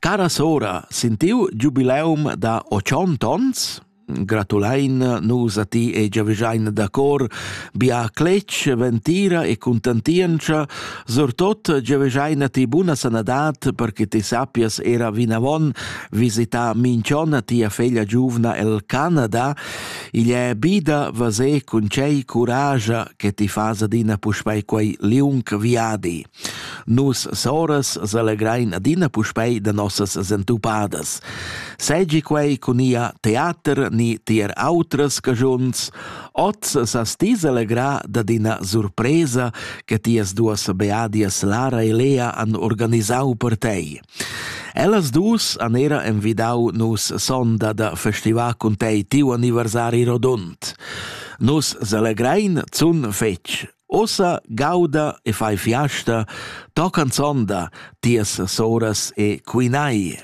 Cara sora, sentiu giubileum da ochont ons? Gratulein nus a ti e giavischein da cor bia cletg, ventira e contentientscha, surtot giavischein a ti buna sanadad per che ti sappias era vinavon visitar minchon a tia feglia giuvna el Canada. Igl è bida vase cun cei curascia che ti fas adina puspei quei liung viadi. Nus soras selegrein adina puspei da nossas sentupadas. Seigi quei cun ia teater ni tier autras cagiuns, oz sas ti selegrar dad ina surpresa che tias duas beadias Lara e Lea han organisau per tei. Ellas dus han era envidau nus sonda da festivar cun tei tiu anniversari rodund. Nus selegrein zun fetg, Ussa gauda e fai fiasta, to canzonda tias soras e quinai.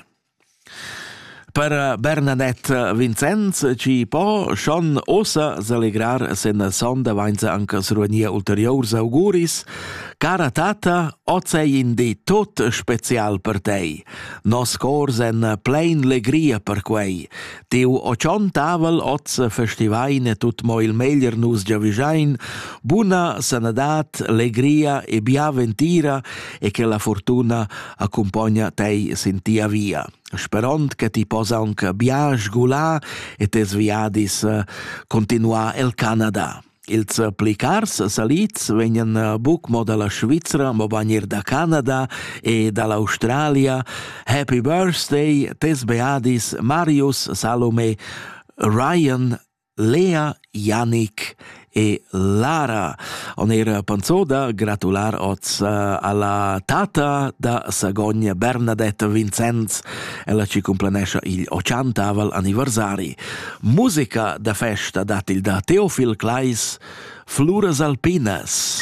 Per Bernadette Vincenz, chi po schon ossa selegrar sen sonda vainza anche sruania ulteriors auguris, cara tata, ozei indi tot special per tei. Nos cor sen plein legria per quei, Teu o tschon tavel oz festivaine tut mo il meglier nus giavischein, buna sanadad, legria e bia ventira e che la fortuna accompogna tei sin tia via. Sperond che ti possa aunc bia sgular e tes viadis continuar el Canada. Ils plicars salids vegnan eh, buc mo dalla Svizra, mobain er da Canada e dall'Australia. Happy Birthday, tes beadis Marius, Salome, Ryan, Lea, Yannick e Lara. On er panzoda gratular oz eh, alla tata da Sagogne Bernadette Vincenz, ella ci complanescia il 80 anniversari. Musica da festa dat il da Teofil Kleis, Fluras alpinas.